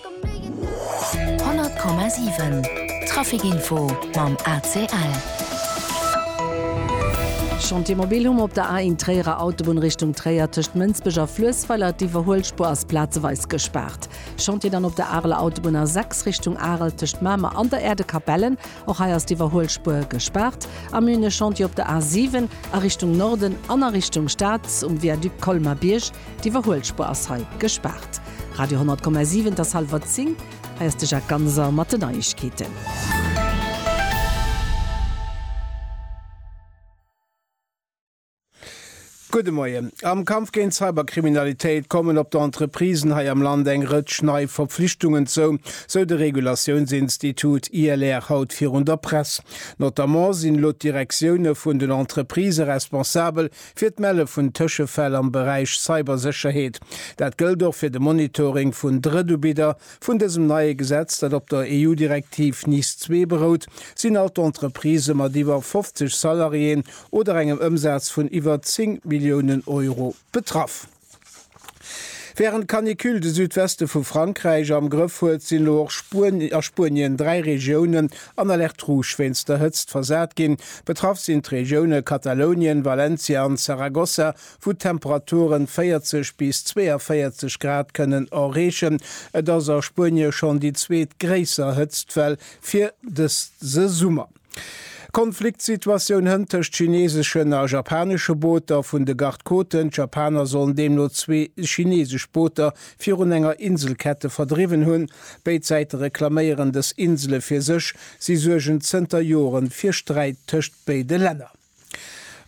100,7 Traficinfo mam ACL. Chantier mobil hu mer op der A1 Tréierer Autobunn Richtung Tréier tëscht Mënsbech a Fluessweiler. D'Iwwerhuelspuer ass plazeweis gespaart. Chantier dann op der Areler Autobunn A6 Richtung Arel tëscht Mamer an der Äerdekapellen. Och hei ass d'Iwwerhuelspuer gespaart. Am Münech Chantier op der A7 a Richtung Norden an a Richtung Stad um Viaduc Colmar-Bierg. D'Iwwerhuelspuer ass hei gespaart. Radio 10,7 't ass hallwer 10, hei ass de Jacques Ganser mat de Neiegkeeten. Gudde Moien. Am Kampf géint d'Cyberkriminalitéit kommen op d'Entreprisen hei am Land eng Rëtsch nei Verpflichtungen zou, sou de Regulatiounsinstitut ILR haut virun der Press. Notamment sinn elo d'Direktioune vun den Entreprisë responsabel fir d'Melle vun Tëschefäll am Beräich Cybersécherheet. Dat gëllt och fir de Monitoring vun Drëtubidder Vun dësem neie Gesetz, dat op der EU-Direktiv NIS ii berout, sinn all d'Entreprisë mat iwwer 50 Salariéen oder engem Ëmsaz vun iwwer 10 Milliounen Euro betraff. Wärend d'Canicule de Südweste vu Frankräich am Grëff huet, sinn elo och a Spuenien dräi Regiounen an Alerte rouge wéinst der Hëtzt versat ginn. Betraff sinn d'Regioune Katalounien, Valencia an Zaragoza. wou d'Temperaturen 40 bis 42 Grad kënnen erreechen. Et ass a Spuenie schonn déi zweet gréisser Hëtztwell fir dëse Summer. Konfliktsituatioun hënt tëscht chineeseschen a japanesche Booter vun de Garde-côten. D'Japaner sollen deemno zwee chineesesch Booter virun enger Inselkette verdriwwen hunn. Béid Säite reklaméieren dës Insele fir sech. Si suergen zënter Jore fir Sträit tëscht béide Länner.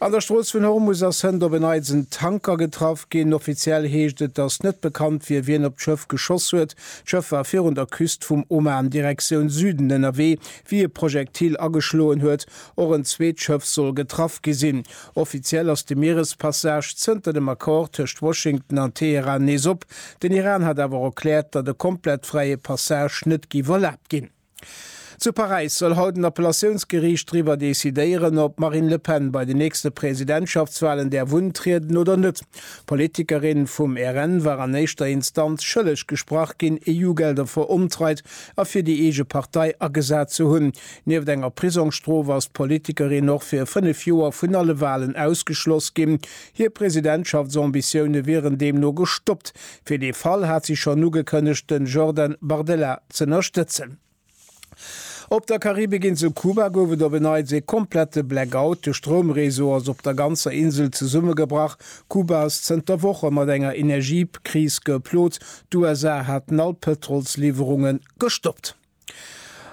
An der Strooss vun Hormus ass hënt op en Neits en Tanker getraff ginn. Offiziell heescht et, datt net bekannt wier, wien op d'Schëff geschoss huet. D'Schëff war virun der Küst vum Oman Direktioun Süden ënnerwee, wéi e Projektil ageschloen huet. Och en zweet Schëff soll getraff gi sinn. Offiziell ass de Mierespassage zënter dem Accord tëscht Washington an Teheran nees op. Den Iran hat awer erkläert, datt e komplett fräie Passage net géif erlaabt ginn. Zu Paräis soll haut en Appellatiounsgeriicht driwwer decidéieren, ob d'Marine Le Pen bei den nächste Presidentschaftswalen däerf untrieden oder net. D'Politikerin vum RN war an éischter Instanz schëlleg gesprach ginn, EU-Gelder veruntreit a fir déi eege Partei agesat ze hunn. Nieft enger Prisongsstrof ass d'Politikerin och fir fënnef Joer vun alle Walen ausgeschloss ginn. Hir Presidentschaftsambitioune wieren deemno gestoppt. Fir dee Fall hat si schonn ugekënnegt, den Jordan Bardella z'ënnerstëtzen. Op der Karibikinsel Kuba gouf et op en Neits ee komplette Blackout. De Stroumreseau ass op der ganzer Insel zesummegebrach. Kuba ass zënter Woche mat enger Energiekris geplot. D'USA haten all Pëtrolsliwwerunge gestoppt.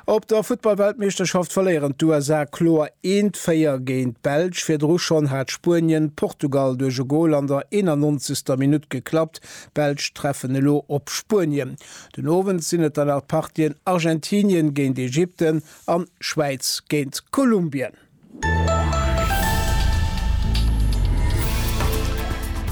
Op der Futtballweltmeeschterschaft verléieren d'USA kloer eent 4 géint d'Belsch. Virdru schonn hat Spuenien Portugal duerch e Gol an der 91. Minutt geklappt. D'Belsch treffen elo op Spuenien. Den Owend sinn et dann nach d'Partien Argentinien géint Ägypten an Schwäiz géint Kolumbien.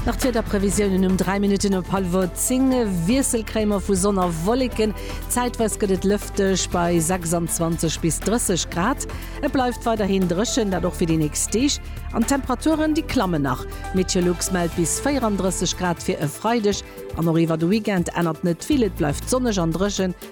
Nach d'Wiederprevisiounen um 3 Minutten op hallwer 10, Wiesselcréimer vu Sonn a Wolleken, zäitweis gëtt et lëfteg bei 26 bis 30 Grad. Et bleift weiderhin dréchen, dat och fir déi nächst Deeg, an d'Temperaturen, déi klammen nach. Meteolux mellt bis 34 Grad fir e Freideg an och iwwer de Weekend ännert net vill, et bleift sonneg an dréchen.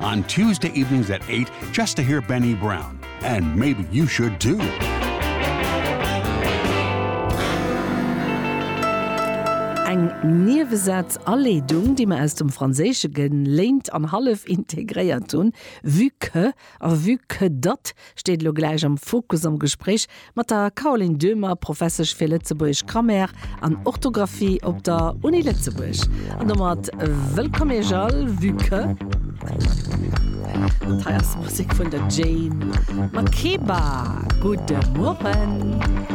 On Tuesday evenings at eight just to hear Benny Brown and maybe you should do. Eng Niewesaz Aleedung, déi mer aus dem Franséische geléint an hallef integréiert hunn, vue que a vue que datt steet elo gläich am Fokus am Gespréich mat der Caroline Döhmer, Professesch fir lëtzebuergesch Grammaire an Orthografie op der Uni Lëtzebuerg. An domat wëllkomm Iech all, vue que dat hei ass Musek vun der Jane Makeba. Gudde Mueren.